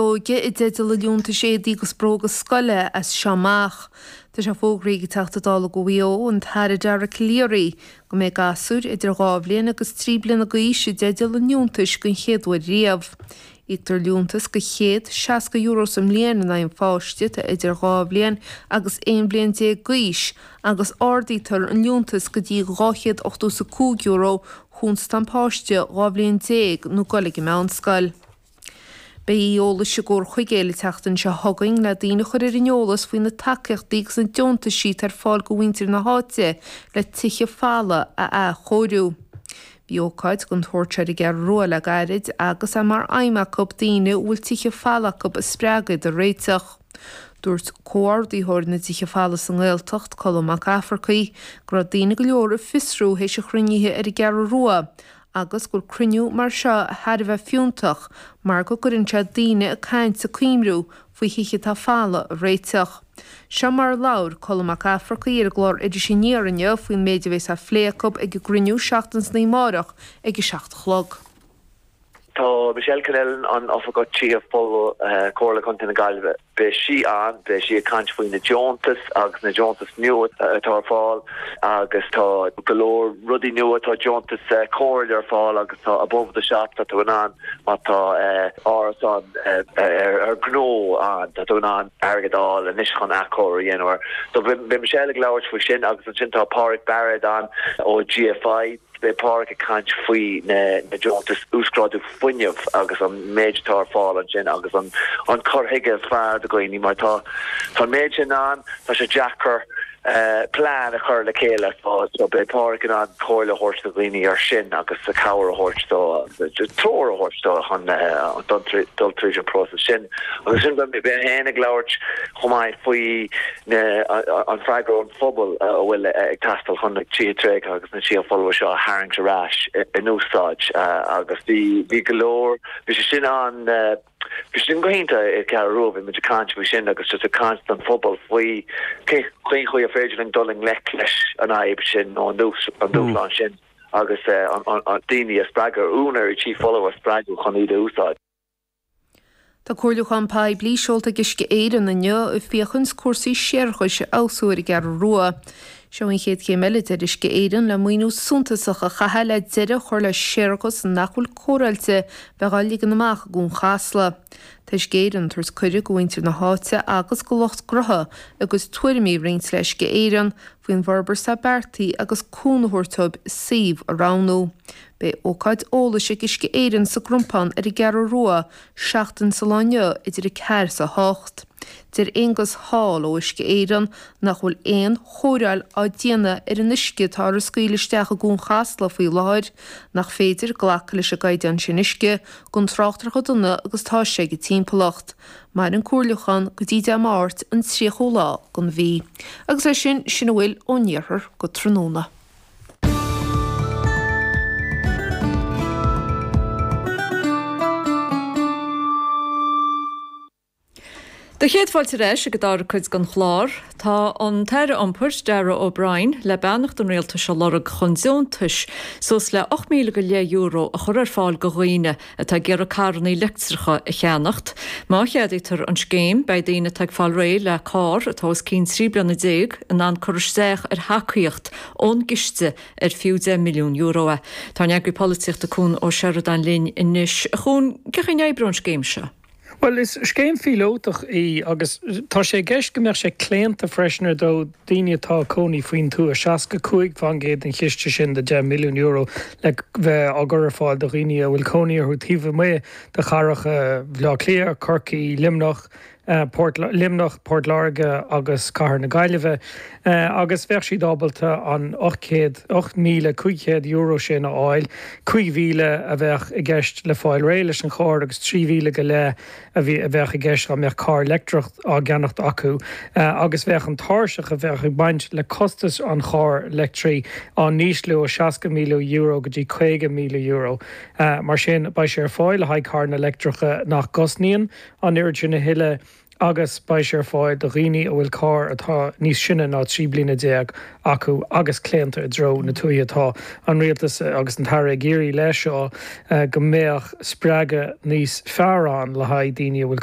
óige i dteideal liúntais éadaí agus bróga scoile as seo amach. Tá sé fógraithe ag an Teachta Dála do Mhaigh Eo, an tAire Dara Calleary, go mbeidh gasúir idir dhá bhliain agus trí bliana d'aois i dteideal an liúntais den chéad uair riamh. Íoctar liúntas de €160 sa mbliain in aghaidh an pháiste atá idir dhá bhliain agus aon bhliain déag d'aois agus ardaítear an liúntas go dtí €285 chúns tá an páiste dhá bhliain déag nó ag dul ag an meánscoil. Beidh oíche eolais i gCorr an Mhóna an tseachtain seo chugainn le daoine a chur ar an eolas faoi na tacaíochtaí agus na deontais siúd atá ar fáil do mhuintir na háite le tithe folmha a athchóiriú. Bhí ócáid den tsórt seo ar an gCeathrú Rua le gairid agus é mar aidhm acu daoine a bhfuil tithe folmha acu a spreagadh dá réiteach. Dúirt comhordaitheoir na dtithe folmha sa nGaeltacht, Colm Mac Eachmharcaigh, go raibh daoine go leor ag fiosrú théis an chruinnithe ar an gCeathrú Rua agus gur cruinniú mar seo thar a bheith fiúntach mar go gcuireann sé daoine ag caint 's ag cuimhniú faoi thithe atá folamh a réiteach. Seo mar a labhair Colm Mac Eachmharcaigh ar an gclár Iris Aniar inniu faoin méid a bhéas á phlé acu ag an gcruinniú seachtain is an oíche amárach ag a seacht a chlog. Tá Michelle Connellan, an tOifigeach Tithe Folmha, Comhairle Contae na Gaillimhe. Beidh sí ann, beidh sí ag caint faoi na deontais agus na deontais nua atá ar fáil agus tá go leor rudaí nua, tá deontais comhairle ar fáil agus tá above the shop, tá tú in ann má tá árasán ar ghnó ann, tá tú in ann airgead a fháil anois chun athchóiriú a dhéanamh air. So beidh Michelle ag labhairt faoi sin agus ansin tá Páraic Bairéad ann ó GFI. Beidh Páraic ag caint faoi na deontais uasghrádú fuinnimh agus an méid atá ar fáil ansin agus an cur chuige is fearr do dhaoine mar tá an méid sin ann, tá sé deacair plean a chur le chéile. So beidh Páraic in ann comhairle a thabhairt do dhaoine ar sin agus cabhair a thabhairt dóibh, treoir a thabhairt dóibh chun dul tríd an próiseas sin. Agus ansin beidh mé féin ag labhairt chomh maith faoi na an freagra ón phobal a bhfuil ag teastáil chun na tithe tréigthe agus na tithe folmha seo a tharraingt ar ais in úsáid agus bhí bhí go leor bhí sé sin an bhí sin go hiontach i Ceathrú Rua, bhí muid ag caint faoi sin agus just ag caint don phobal faoi cé cén chaoi ar féidir linn dul i ngleic leis an fhadhb sin nó an dús an dúshlán sin agus an daoine a spreagadh, úinéirí tí folmha a spreagadh chun iad a úsáid. Tá comhairliúchán poiblí seolta ag Uisce Éireann inniu ag féachaint cúrsaí séarachais a fheabhsú ar an gCeathrú Rua. Seo an chéad chéim eile deir Uisce Éireann le maoiniú suntasach a chaitheamh le deireadh a chur le séarachas nach bhfuil cóireáilte bheith á ligean amach i gCuan Chasla. Tá Uisce Éireann ag tabhairt cuireadh do mhuintir na háite agus do lucht gnotha a gcuid tuairimí a roinnt le Uisce Éireann faoin bhforbairt atá beartaithe agus cúnamh a thabhairt dóibh suíomh a roghnú. Beidh ócáid eolais ag Uisce Éireann sa gCrumpán ar an gCeathrú Rua seachtain sa lá inniu idir a 4 's a 8. Deir Aonghus Hall ó Uisce Éireann nach bhfuil aon chóireáil á déanamh ar an uisce atá á scaoileadh isteach i gCuan Chasla faoi láthair, nach féidir glacadh leis an gcaighdeán sin uisce gan trácht ar chomh dona agus atá sé don timpeallacht. Maireann an comhairliúchán go dtí Dé Máirt an 30ú lá den mhí. Agus é sin, sin a bhfuil ón Iarthar go tráthnóna. Do chéad fáilte ar ais ag an dara cuid den chlár. Tá an tAire Iompair, Darragh O'Brien, le beannacht an Rialtais a lorg chun deontais suas le €8,500 a chur ar fáil do dhaoine atá ag iarraidh carrannaí leictreacha a cheannacht. Má cheadaítear an scéim, beidh daoine atá ag fáil réidh le carr atá os cionn 13 bliana in ann cur isteach ar thacaíocht ón gciste ar fiú €10 milliún. Tá ár n-eagraí polaitíochta Cuan Ó Seireadáin linn anois. Cuan, cén chaoi a n-oibreoidh an scéim seo? Bhuel, is scéim phíolótach í agus tá sé i gceist go mbeadh sé claonta freisin ar ndóigh, daoine atá ina gcónaí faoin tuath, 65 fán gcéad den chiste sin de €10 milliún le bheith á chur ar fáil do dhaoine a bhfuil cónaí orthu taobh amuigh de chathracha Bhaile Átha Cliath, Corcaí, Luimneach, Port, Luimneach, Port Láirge agus cathair na Gaillimhe. agus bheadh siad ábalta an €8,500 sin a fháil, 5,000 a bheadh i gceist le fáil réidh leis an charr agus 3,000 go leith a bheadh i gceist dá mbeadh carr leictreach á cheannacht acu, agus bheadh an tairseach a bheadh ag baint le costas an chairr leictrigh á ísliú ó €60,000 go dtí €50,000. Mar sin, beidh sé ar fáil le haghaidh carranna leictreacha nach gcosnaíonn an oiread sin a thuilleadh, agus beidh sé ar fáil do dhaoine a bhfuil carr atá níos sine ná 13 bliana acu agus claonta i dtreo na tuaithe. Tá an Rialtas agus an tAire ag iarraidh leis seo go mbeadh spreagadh níos fearr ann le haghaidh daoine a bhfuil